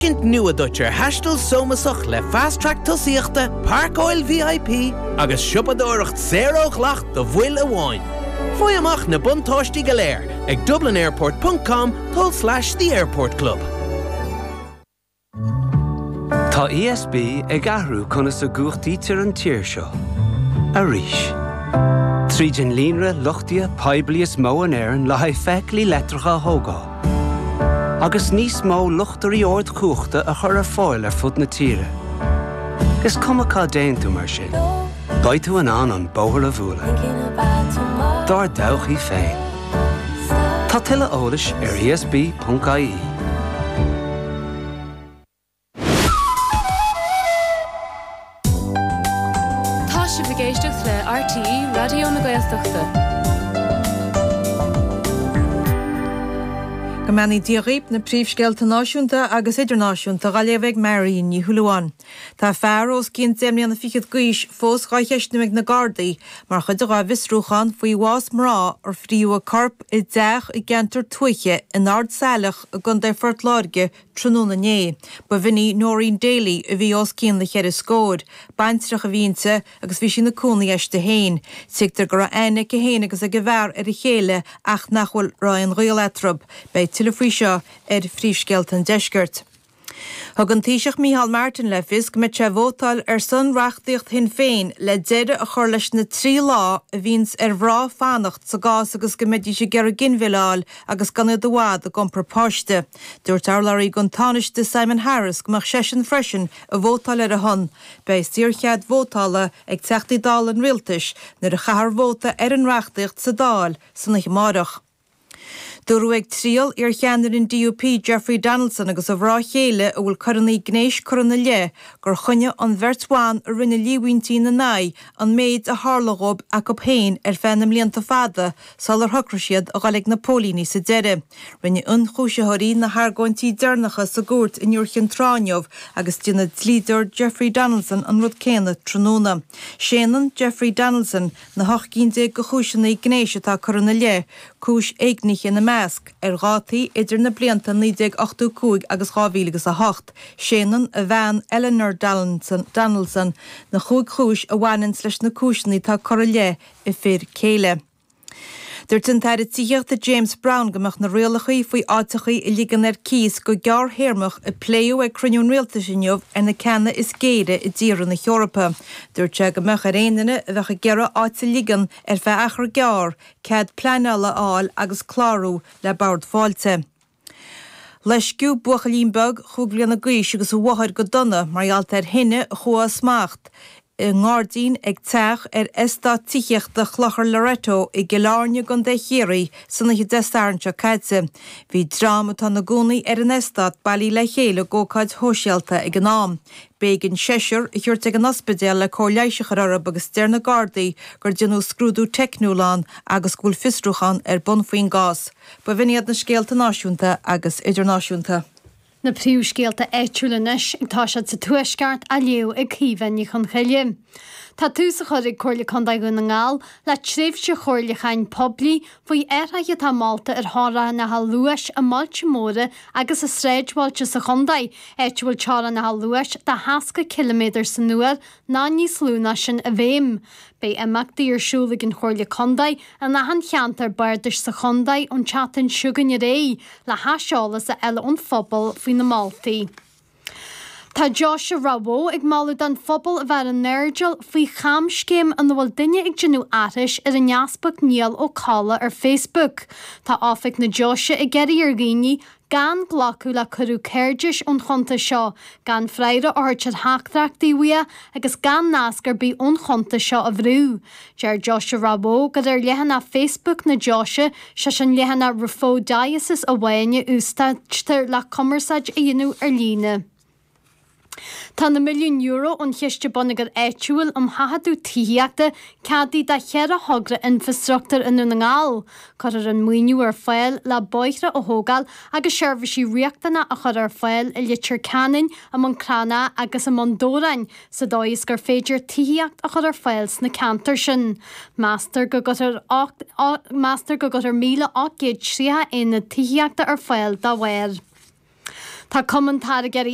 tuiscint nua duit ar thaisteal sócúlach le Fast Track Tosaíochta, Pairceáil VIP agus siopadóireacht saor ó dhleacht do bhaill amháin. Faigh amach na buntáistí go léir ag dublinairport.com tulslais the airport club. Tá ESB ag athrú conas a gcumhachtaítear an tír seo. Arís. Tríd an líonra luchtaithe poiblí is mó in Éirinn le haghaidh feithiclí leictreacha a thógáil, agus níos mó luchtairí ardchumhachta a chur ar fáil ar fud na tíre. Is cuma cá dtéann tú mar sin, beidh tú in ann an bóthar a bhualadh dár dtodhchaí féin. Tá tuilleadh eolais ar esb.ie. Tá sibh ag éisteacht le RTÉ Raidió na Gaeltachta. Go mbeannaí Dia dhaoib, na príomhscéalta náisiúnta agus idirnáisiúnta dhá léamh ag Marion Ní Shúilleabháin. Tá fear os cionn deich mbliana fichead d'aois fós dhá cheistniú ag na Gardaí mar chuid dhá bhfiosrúchán faoi bhás mná ar fríothadh a corp i dteach i gceantar tuaithe in Ard Saileach i gContae Phort Láirge Tráthnóna inné, ba in í Noreen Daly a bhí os cionn na cheithre scóir. Baintreach a bhí inti agus bhí sí ina cónaí aisti féin. Tuigtear go raibh aithne aici féin agus ag an bhfear ar a chéile ach nach bhfuil raibh aon ghaol eatarthu. Beidh tuilleadh faoi seo ar phríomhscéalta an deiscirt. Thug an Taoiseach Micheál Martin le fios go mbeidh sé ag vótáil ar son reachtaíocht Shinn Féin le deireadh a chur leis na trí lá a bhíonns ar mhrá fanacht sa gcás is go mbeidís ag iarraidh ginmhilleadh a fháil agus gan iad i bhfad ag iompar páiste. Dúirt urlabhraí don Tánaiste, Simon Harris, go mbeadh seisean freisin ag vótáil ar a shon. Beidh saorchead vótála ag Teachtaí Dála an Rialtais nuair a chaithfear vóta ar an reachtaíocht sa Dáil san oíche amárach. Dúradh ag triail iarcheannaire an DUP, Jeffrey Donaldson, agus a mhrá chéile a bhfuil coireanna gnéis curtha ina leith gur choinnigh an bheirt bhan a rinne líomhaintí ina n-aghaidh an méid a tharla dhóibh acu féin ar feadh na mblianta fada sular shocraigh siad a dhul ag na póilíní sa deireadh. Rinne ionchúisitheoirí na hargóintí deireanacha sa gcúirt in Iúr Chinn Trá inniu agus déanfaidh dlíodóir Jeffrey Donaldson an rud céanna tráthnóna. Séanann Jeffrey Donaldson na hocht gcinn déag de chúiseanna gnéis atá curtha ina leith, cúis éignithe ina measc, ar dhátaí idir na blianta 1985 agus 2008. Séanann a bhean, Eleanor Donaldson, na cúig chúis a bhaineanns leis na cúiseanna atá curtha i leith a fir céile. Dúirt an tAire Tithíochta James Browne go mbeadh na rialachaí faoi áiteachaí a ligean ar cíos go gearrthéarmach a pléadh ag cruinniú an Rialtais inniu ar na ceanna is géire i dtíortha na hEorpa. Dúirt sé go mbeadh ar aon duine a bheadh ag iarraidh áit a ligean ar feadh achar gearr cead pleanála a fháil agus clárú le bord fáilte. Loisceadh buachaillín beag chúig bhliana d'aois agus a mháthair go dona mar gheall ar thine a chuaigh as smacht i ngairdín ag teach ar eastát tithíochta Chlochar Loreto i gCill Airne i gContae Chiarraí san oíche Dé Sathairn seo caite. Bhí dream atá ina gcónaí ar an eastát bailithe le chéile ag ócáid shóisialta ag an am. B'éigean seisear a thabhairt ag an ospidéal le cóir leighis a chur orthu agus deir na Gardaí gur déanadh scrúdú teicniúil ann agus go bhfuil fiosrúchán ar bun faoin gcás. B'in iad na scéalta náisiúnta agus idirnáisiúnta. Na príomhscéalta áitiúil anois, tá siad sa Tuaisceart, á léamh ag Caoimhe Ní Chonchoille. Tá tús á chur ag Comhairle Contae Dhún na nGall le tréimhse chomhairliúcháin poiblí faoi athruithe atá molta ar theorainneacha luais i mbailte móra agus i sráidbhailte sa chontae, áit a bhfuil teorainneacha luais de sheasca ciliméadar san uair ná níos lú ná sin i bhfeidhm. Beidh imeachtaí ar siúl ag an Chomhairle Contae in achan cheantar bardais sa chontae ón tseachtain seo chugainn ar aghaidh le haiseolas a fháil ón phobal faoi na moltaí. Tá Deoise Ráth Bhoth ag moladh don phobal a bheith ar an airdeall faoi chamscéim ina bhfuil duine ag déanamh aithris ar an Easpag Niall Ó Colla ar Facebook. Tá Oifig na Deoise ag iarraidh ar dhaoine, Gan glacadh le cuireadh cairdis ón chuntas seo, gan freagra a thabhairt ar theachtaireachtaí uaidh agus gan nasc ar bith ón chuntas seo a bhrú. Deir Deoise Ráth Bhoth gur ar leathanach Facebook na deoise, sé sin leathanach Raphoe Diocese amháin, a úsáidtear le cumarsáid a dhéanamh ar líne. Tá na milliúin euro ón Chiste Bonneagair Áitiúil um Thaifeadadh Tithíochta, ceadaithe do cheithre thogra infreastruchtúir i nDún na nGall. Cuirfear an maoiniú ar fáil le bóithre a thógáil agus seirbhísí riachtanacha a chur ar fáil i Leitir Ceanainn, i mBun Cranncha agus i mBun Dobhráin, sa dóigh is gur féidir tithíocht a chur ar fáil sna ceantair sin. Meastar go gcuirfear, meastar go gcuirfear 1,830 aonad tithíochta ar fáil dá bharr. Tá Cumann Táirgeoirí